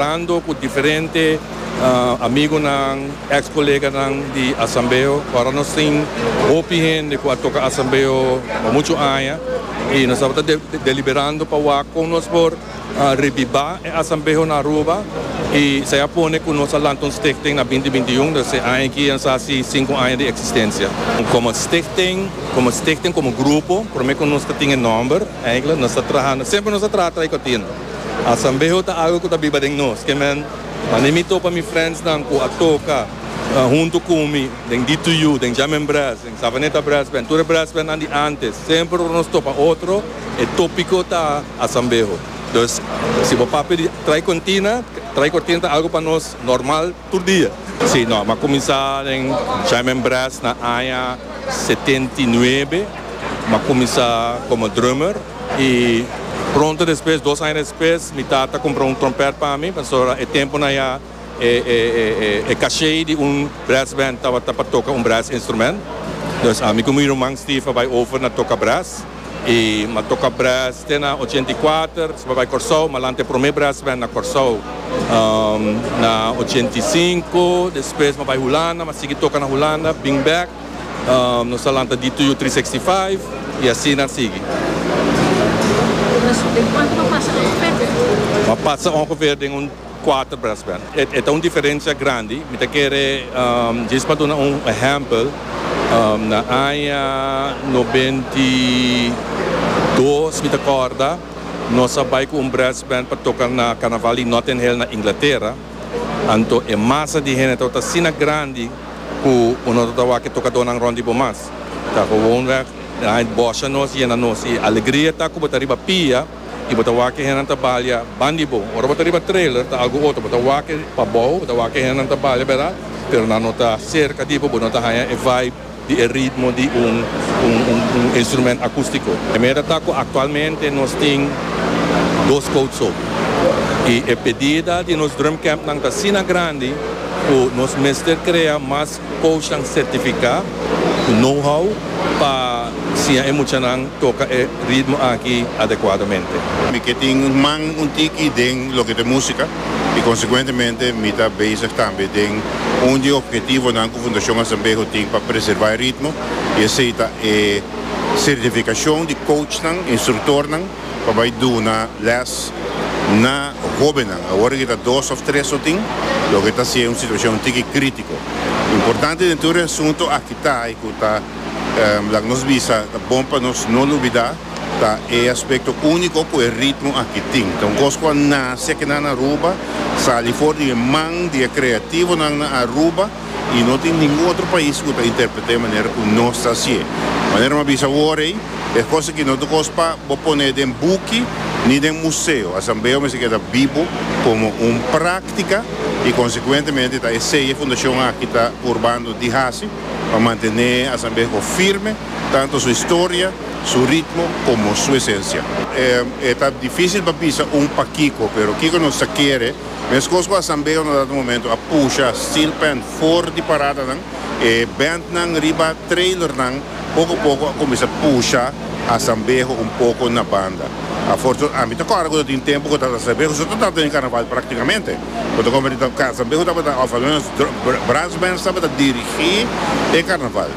Hablando cu diferente amigonan, ex coleganan di Asambeo, ora nos tin hopi hende cu a toca Asambeo pa mucho aña y nos tabata deliberando pa wak con nos por rebiba e Asambeo na Aruba y esey a pone cu nos a lanta un stichting na binti binti y un, dus e aña aki a nos a haci sinku aña di existencia. Como stichting, como stichting, como grupo, prome cu nos ta tin e nomber, eindelijk nos ta trahando, semper nos a traha trae contino. Asambeho ta algo cu ta biba den nos. Kemen mane mi topa mi friendsnan cu a toca hunto cu mi den D2U, den Jam en Brass, den Savaneta Brass Band, tur e brass bandnan di antes. Semper ora nos topa otro, e topico ta Asambeho. Dus si bo papia di Trae Cortina, Trae Cortina ta algo pa nos normal. Tur dia? Sí, no. M'a cuminsa den Jaime Brass na aña setenta i nuebe. M'a cuminsa como drummer y pronto despues, dos aña despues, mi tata cumpra un trompet pa mi, pasobra e temponan ya e caché di un brass band tabata pa toca un brass instrument. Dus ami cu mi ruman Steve a bay over na toca brass. E ma toca brass te na ochenta i kuater se pa bai Corsou ma lante prome brass band na Corsou na ochenta i sinku despues ma bai Hulanda ma sigui toca na Hulanda bring back nos ta lanta D to U tri seksti faif y asina sigui. Nos den cuanto ma pasa ongeveer den. Ma pasa ongeveer den un. cuater brass band. E ta un diferencia grandi. Mi ta kere djis pa duna un ehempel. Na aña noventa i dos mi ta corda nos a bay cu un brass band pa toca na Carnaval di Notting Hill na Inglatera. Anto e masa di hende tabata asina grandi cu bo no tabata wak e tocadonan rond di bo mas. Ta gewonweg, bossa nos yena nos y alegria ta cu bo ta riba pia. y bo ta wak e hendenan ta balia ban di bo. Ora bo ta riba trailer ta algo otro, bo ta wak e pabou, bo ta wak e hendenan ta balia bera, pero nan no ta cerca di bo, bo no ta haya e vibe di e ritmo di un un instrument acustico. E meda ta cu actualmente nos tin dos coat so y e pedida di nos drumcampnan ta asina grandi cu nos mester crea mas. Coachnan certifica cu know-how pa siña e muchanan toca e ritmo aki adecuadamente. Mi ke tin man un tiki den loke ta musica y consecuentemente mi ta bezig tambe den un di e objetivonan cu Fundacion Azambejo tin pa preserva e ritmo y esey ta e certificacion di coachnan, instructornan. pa bai duna les na hobennan. Awor eki ta dos of tres lo tin, loke ta siña un situashon tiki kritiko. Importante den tur e asuntu aki ta y ku ta laga nos bisa ta bon pa nos no lubida ta e aspekto uniko ku e ritmo aki tin. Ta un kos ku a nase aki nan na Aruba, sali for di e man di e kreativonan na Aruba. I no tin ningun otro pais ku ta interpret'é manera ku nos ta hasié. Manera mi a bisa awor ei, e kos aki no ta kos pa bo pon'é den buki ni den museo. Asambeo mester keda bibo komo un práktika i konsekuentemente ta esei e fundashon aki ta purbando di hasi pa mantené Asambeho firme, tantu su historia, su ritmo komo su esensia. E ta difísil pa bisa un pakiko, pero kiko nos ta kere? Meskos ku asambeo na dado momento a pusha steel pan for di paradanan, e bandnan riba trailernan poko poko a kuminsá pusha asambeho un poko na banda. Afortuna, ami ta kòrda ku ta tin tempu ku ta asambeho so ta tabata den karnaval praktikamente. Bo ta konprende ta asambeho tabata òf almenos brass bands tabata dirigí e karnaval.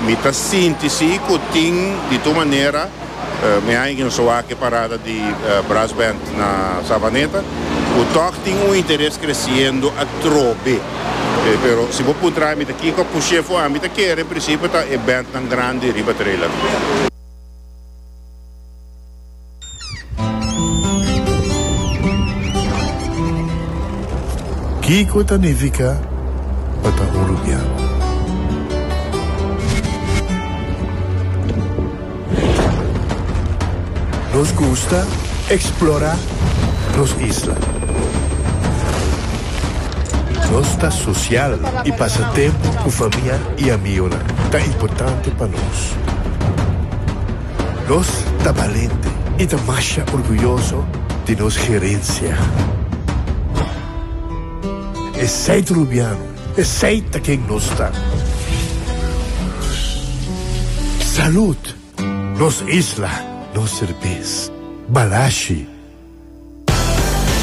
Mi ta sinti si ku tin di tur manera. Mi haña ki nos a wak e parada di Brass Band na Savaneta ku tòg tin un interes kresiendo atrobe. Pero si bo puntra mi ta kiko push'é for ami ta kere, en prinsipio ta e bandnan grandi riba trailer. Kiko ta nifiká pa ta un rubian? Nos gusta eksplorá nos isla. Nos ta sosial i pasa tempu ku famia i amigunan ta importante pa nos. Nos ta balente i ta masha orguyoso di nos herensia. Esei Trubiano Esey ta ken nos ta. Salud! Nos isla, nos serbes. Balashi!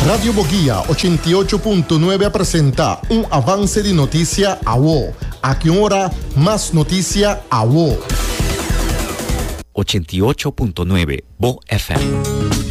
Radio Boguia ochenta i ocho punto nuebe a presenta un avance di notisia awo. Aki un ora mas notisia awo. Ochenta i ocho punto nuebe, Bo FM.